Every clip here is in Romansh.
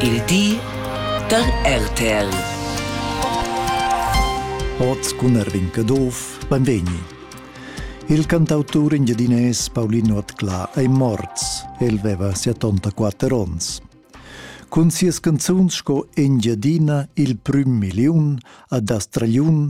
Il di da RTL. Oz cun Erwin Caduff, benvegni. Il cantautur engiadinais Paulino Atcla ei morts. El veva 74 onns. Cun sias canzuns sco Engiadina il prüm milliun, Ad Astragliun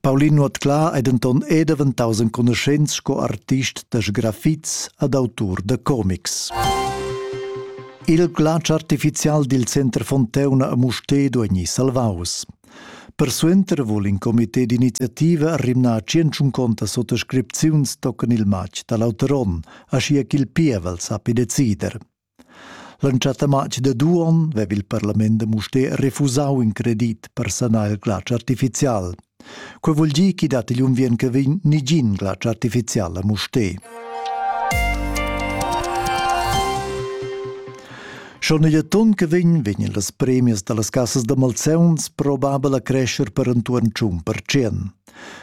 Paulin Nuotclà è denton è daventaus enconuschents sco artist da sgrafits ad autur da comics. Il glatsch artificial dil Center Fonteuna a Mustedo egni salvaus. Persuenter vul in comité d'iniziativa rimnar tschentschunconta sottoscripziuns tocan il matg dall'auter onn, aschia ch'il pievel sappi decider. L'entschatta matg da Duon veva il parlament da Mustér refusau in credit per sanar il glatsch artificial. Quei vul dir ch'i dat igl unviern che vegn nigin glatsch artificial a Mustér. Schon igl ton che vegn vegnan las premias dallas cassas da malseuns probabel a crescer per entuorn tschun percent.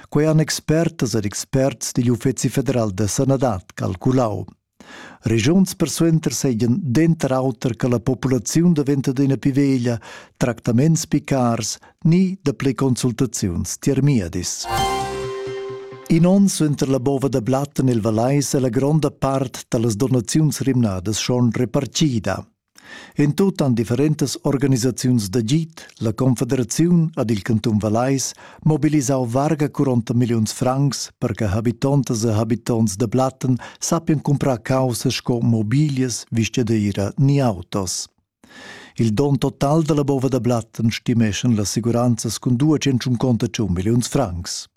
Quei han expertas ed experts digl Uffeci federal da sanadad calculau. Regiuns persuenter seigien denter auter che la populaziun daventa adina pli veglia, tractaments pli cars ni dapli consultaziuns tiermiedis. In onn suenter la bova da blatt en il Valais è la gronda part dallas donaziuns rimnadas schon repartida. En tut han differentas organisaziuns d'agid, la Confederaziun ed il cantun Vallais mobilisau varga 40 milliuns francs per che habitontas e habitonts da Blatten sappian comprar caussas sco mobilias, vistadeira ni autos. Il don total dalla bova da Blatten stimeschan las assicuranzas cun 201 conto 1 milliuns francs.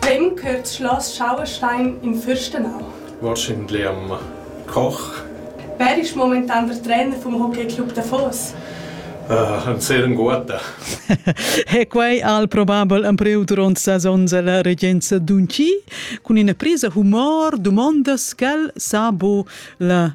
Vegn cheu schloss Schauerstein in furstenau? Wahrscheinlich Koch. Wer ist momentan der Trainer vom Hockeyclub Davos? Uh, ein sehr guter. e quei al probabel empriu duront sasons la regenza d'Unci cun ina presa humor dumondas quel sabo la